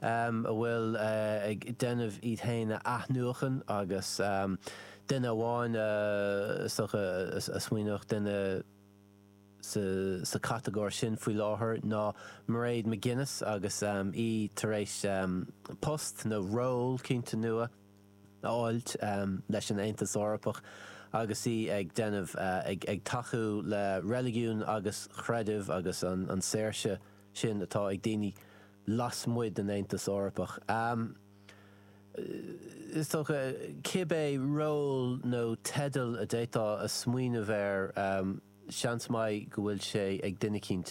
a bhfuil ag déanamh iad féin a athnuachan agus duine amháin is dócha a smaoineodh duine sa chatagóir sin faoi láthair ná Mairéad McGuinness agus í tar éis post nó ról cinnte nua a fháilt leis an Aontas Eorpach agus í ag déanamh ag tacú le reiligiún agus creideamh agus an saoirse sin atá ag daoine lasmuigh den Aontas Eorpach. Is dócha, cibé ról nó teideal a d'fhéadfá a smaoineamh air, seans maith go bhfuil sé ag duine eicínt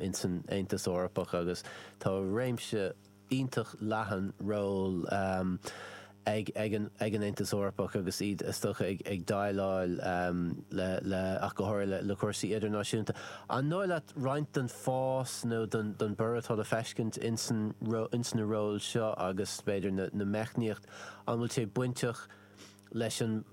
ins an Aontas Eorpach agus tá réimse iontach leathan ról, ag an Aontas Eorpach agus iad is dócha ag déileáil le, ach go háirithe le cúrsaí idirnáisiúnta. An dóigh leat roinnt den fás nó den borradh atá le feiscint ins na róil seo agus, b'fhéidir, na meicníochtaí, an bhfuil sé bainteach leis an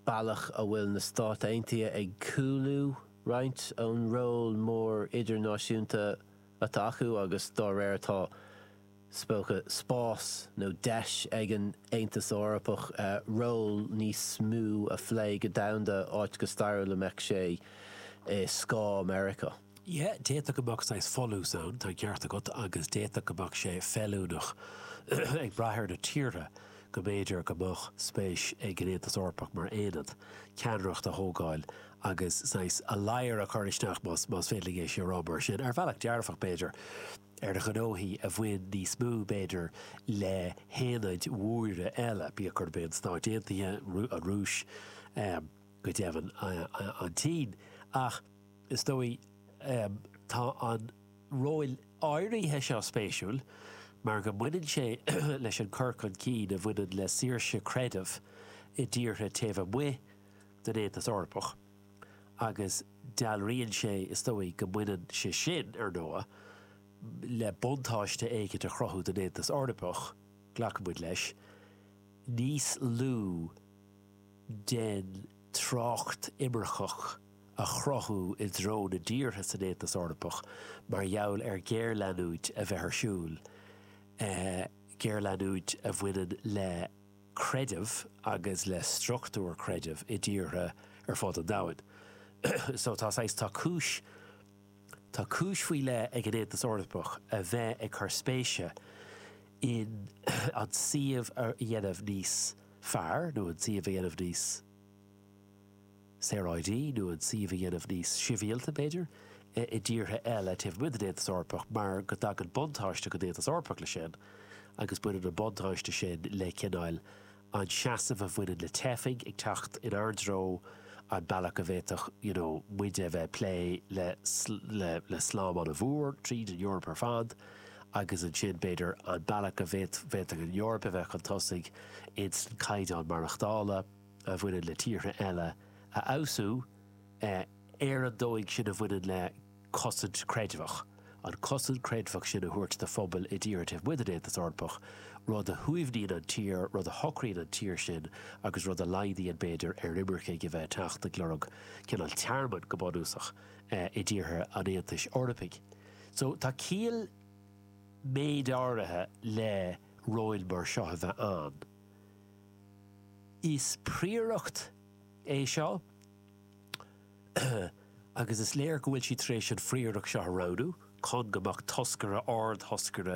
bealach a bhfuil na Stáit Aontaithe ag cúlú roinnt ón ról mór idirnáisiúnta atá acu agus dá réir atá, Is dócha, spás nó deis ag an Aontas Eorpach ról níos mó a phlé go domhanda, áit go stairiúil a mbeadh sé i scáth Meiriceá. Yeah, d'fhéadfadh go mbeadh saghas folús ann, tá an ceart agat, agus d'fhéadfadh go mbeadh sé feiliúnach, ag brath ar na tíortha, go mb'fhéidir go mbeadh spéis ag an Aontas Eorpach mar aonad, ceannaireacht a thógáil agus saghas ladhar a chur isteach, más féidir liom é sin a rá mar sin. Ar bhealach dearfach, b'fhéidir. ar ghnóthaí a bhain níos mó, b'fhéidir, le haonaid mhóra eile, bíodh gurb é na Stáit Aontaithe, an Rúis, go deimhin an tSín. Ach is dóigh tá an ról áirithe seo spéisiúil mar go mbaineann sé leis an cur chun cinn a bhaineann le saoirse creidimh i dtíortha taobh amuigh den Aontas Eorpach. agus dealraíonn sé, is dóigh, go mbaineann sé sin, ar ndóigh, le buntáiste éicint a chruthú don Aontas Eorpach, glacann muid leis, níos lú den trácht imirceach a chruthú i dtreo na dtíortha san Aontas Eorpach mar gheall ar ghéarleanúint a bheith ar siúl, géarleanúint a bhaineann le. creideamh agus le struchtúir creidimh i dtíortha ar fud an domhain. So tá saghas, tá cúis, tá cúis faoi leith ag an Aontas Eorpach a bheith ag cur spéise in an suíomh a dhéanamh níos fearr nó an suíomh a dhéanamh níos, saoráidí nó an suíomh a dhéanamh níos sibhialta, b'fhéidir, i dtíortha eile taobh amuigh den Aontas Eorpach mar go dtagann buntáiste don Aontas Eorpach leis sin agus baineann an buntáiste sin le cineál an seasamh a bhaineann le teifigh ag teacht inár dtreo, an bealach a bhféadfadh you know muide a bheith ag plé le, le, le slám an-mhór tríd an Eoraip ar fad agus ansin b'fhéidir an bealach a bhféadfadh an Eoraip a bheith chun tosaigh insan caighdeán maireachtála. a bhaineann le tíortha eile a fheabhsú, ar an dóigh sin a bhaineann le cosaint creidmheach, an cosaint creidmheach sin a thabhairt do phobail i dtíortha taobh amuigh den Aontas Eorpach, rud a shuaimhníonn an tír, rud a shocraíonn an tír sin agus rud a laghdaíonn, b'fhéidir, ar imircigh a bheith ag teacht ag lorg cineál tearmainn, go bunúsach, i dtíortha an Aontais Eorpaigh. So, tá ciall méid áirithe le róil mar seo a bheith ann. Is príoracht é seo agus is léir go bhfuil siad tar éis an phríoracht seo a roghnú chun go mbeadh toscaire, ard-thoscaire,